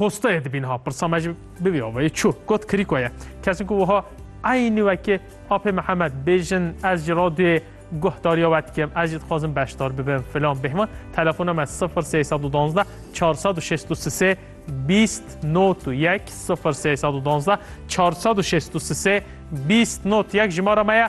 Hostayê dibîn ha pirsa me jî bibî avayê çû got kirîko ye. Kesin ku wiha eynî wekê apê Mihemed bêjin ez ji radyoyê guhdariya we dikim ez jî dixwazim beşdar bibim filan bêhman telefona me 0312 463 20 not û yek 0312 463 20 not yek jimara me ye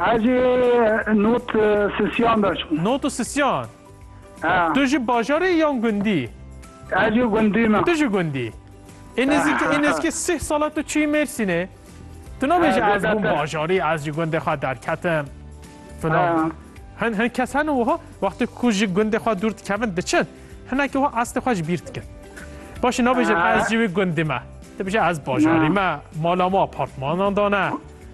Ez ê not sisyan veçim. Not sisyan? He. Tu ji bajarê yî yan gundî? Ez ji gundî me. Tu ji gundî? Ê nêzîkî ê nêzîkî sih sala tu çûyî Mêrsînê. Tu nabêjî ez bûm bajarî, ez ji gundê xwe derketim filan. Hin hin kes hene wiha wextê ku ji gundê xwe dûr dikevin diçin hinekî wiha estê xwe ji bîr dikin. Başî nabêjin ez ji wî gundî me. Dibêje ez bajarî me, mala me apartmanan dane.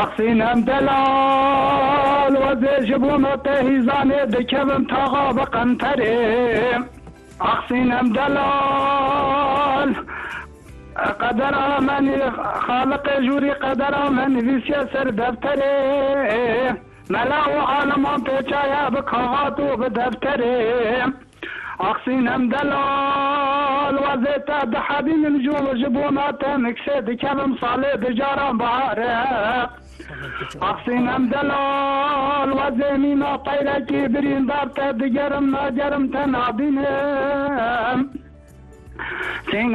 Asîn Hemdelal, Wezê ji bo me tê hîzanê dikevim taxa bi qenterê. Asîn Hemdelal, Qedera me nî, Xaliqê jûrî qedera me nivîsiye ser defterê. Mela û aliman tê çaya bi kaxat û bi defterê. Ax sînem delal wezê te dihebînim ji û ji bona te min kisê dikevim salê di caran bihare. Ax sînem delal wezê mîna qeyrekî birîndar te digerim nagerim te nabînim. Sînem.